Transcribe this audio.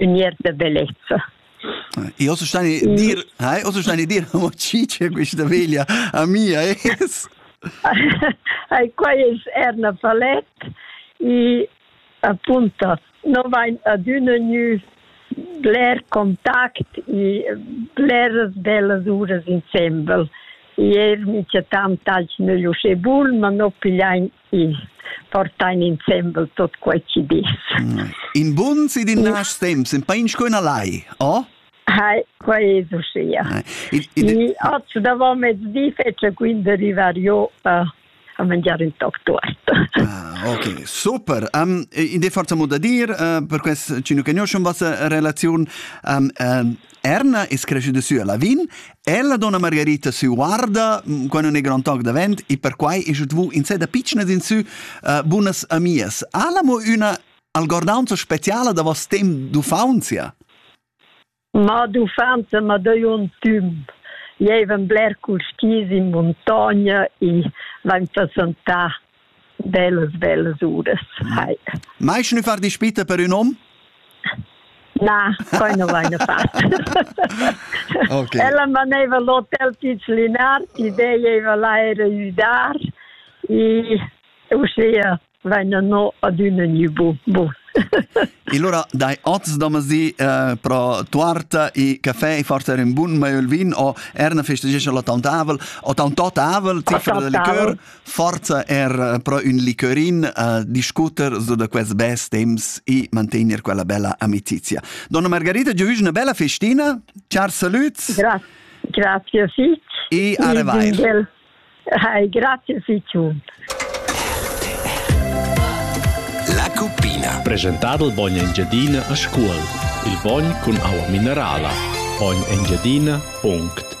ün iert da bellezza. Io so stani dir, hai, o so stani dir, mo cice questa veglia a mia es. Ai quais erna palet e appunto non vain adüna gnü bler contact e bleras bellas uras insembel. Ier mi chatam tagl nel uschè bun, ma no pigliain Sì, portain insembel tot quei chi dis. Mm. In bun si din nas temps, in pain sco una lai, oh? Hai, quei è uschia. I oggi davant mezdi fece quindi arrivare io uh, a mangiare un toc tuorta. Ah, ok, super. Um, in de forza mo da dir, uh, per quest ci nu conoscem vostra relazion, um, uh, Erna es creschüda sü a Lavin e la donna Margarita sü guarda mm, quando ne grand toc davent e perquai es dvu in seda pitschnas in sü uh, bunas amias. Ha la mo üna algordanza speciala da vos temp d'uffanzia? Ma d'uffanza ma deu un tüm. Jevem bler cul skis in muntogna e vain passantà Bellas, bellas uras hai. Mai schon far dispita per un hom? Na, poi non vaina fatto. okay. Ella maneva l'hotel Tizilinard, ideia era l'aere udar, e uscia vaina no ad una new bus. e allora dai oz domasi eh, pro tuarta e caffè e forse era un buon maiolvin o er una festeggia la taunt avel o taunt tot avel zifra del liqueur Forza er pro ün liquorin a discuter su da quels bels temps e mantegner quella bella amicizia. Donna Margarita, giu una bella festina. Ciao, salut. Grazie. Grazie, Fitz. E a revair. Hai, grazie, Fitz. La cuppina. Presentado il bogno Engiadina a scuola. Il bogno con acqua minerala. Ogni Engiadina.it